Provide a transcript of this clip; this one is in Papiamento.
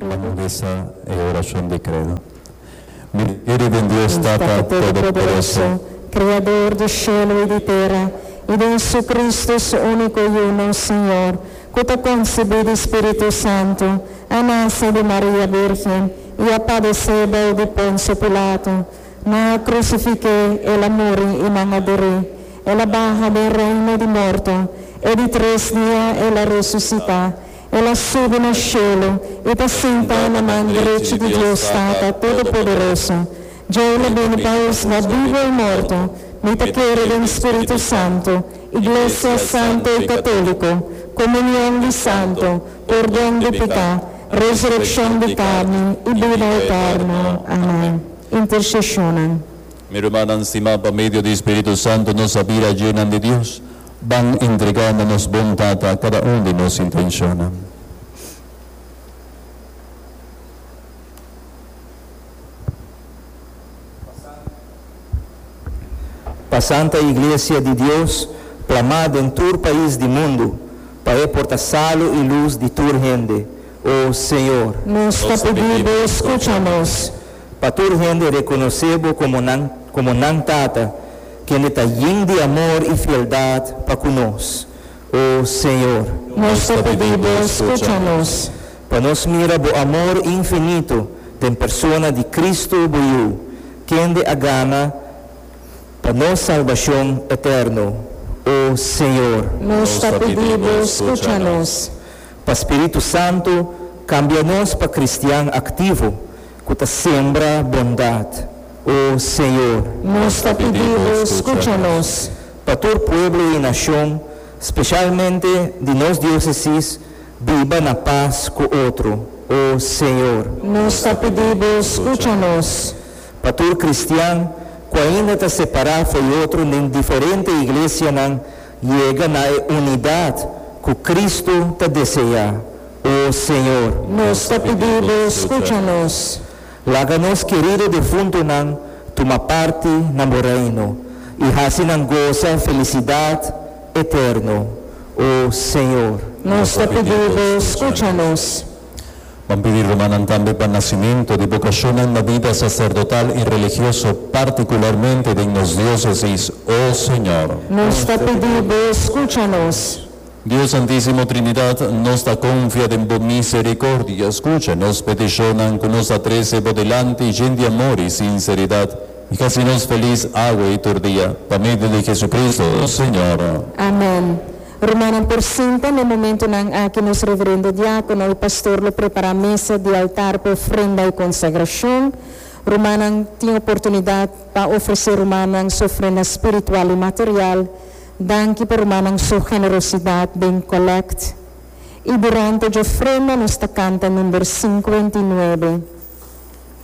Vamos bisa e oracion di credo. Mi cree den Dios Tata Todopoderoso, Criador di cielo y di tera, y den Jesucristo, Su unico y uno Señor, cu ta concibi di Spiritu Santo, a nace di Maria Virgen, y a padece bou di Poncio Pilato, Na crucifiqué El a muri i nan a burí. El a baha den reino di morto, e di tres dia El a resucitá. El a subi na shelu i ta sentá na man drechi di Dios Tata Todopoderoso. Dj'Ei na bini pa husga bibu i morto. Mi ta kere den Spiritu Santu, iglesia santo i católico, comunion di santo, pordon di picá, resureccion di carni i bida eterno. Amen. intercesionnan. Mi rumannan stimá, pa medio di Spiritu Santu nos a bira djenan di Dios. Ban entregá na nos bon Tata kada un di nos intencionnan. Pa Santa Iglesia di Dios plamá den tur pais di mundu, pa e porta salu i lus di tur hende, O Señor, nos ta pidi Bo scucha nos. Pa tur hende reconoce Bo como nan como nan Tata, kende ta yin di amor y fieldad pa cu nos. O Señor. Nos ta pidi Bo scucha nos. Pa nos mira Bo amor infinito den persona di Cristo Bo Yu, kende a gana pa nos salbacion eterno. O Señor. Nos ta pidi Bo scucha nos. pa spiritu santu kambia nos pa kristian aktivo ku ta sembra bondat, O Señor, nos ta pidi Bo skucha nos. Pa tur pueblo i nashon, speshalmente di nos diosesis, biba na pas ku otro, O Señor. Nos ta pidi Bo skucha nos. Pa tur kristian ku ainda ta separá fo'i otro den diferente iglesianan, Yega na e unidad cu Cristo ta desea, O Señor. Nos ta pidi Bo scucha nos. Laga nos kerido defuntonan tuma parti na Bo Reino y haci nan goza felicidad eterno, O Señor. Nos ta pidi Bo scucha nos. Ban pidi rumannan tambe pa nacimentu di bocashonnan na bida sacerdotal y religioso, particularmente den nos diocesis, o Señor. Nos ta pidi Bo scucha nos. Dios Santisimo Trinidad, nos ta confia den Bo misericordia. Scucha nos peticion-nan cu nos a trece Bo dilanti yen di amor y sinceridad, y haci nos feliz awe y tur dia. Pa medio di Jesucristo, Señor. Amen. Rumannan por sinta n'e momentunan aki nos reverendo diákono i pastor lo prepará mesa di altar pa ofrenda i konsagrashon. Rumannan tin oportunidat pa ofresé rumannan su ofrenda spiritual i material. Danki pa rumannan su generosidat den kòlèkt. I durante dje ofrenda nos ta kanta number sinkuenta i nuebe.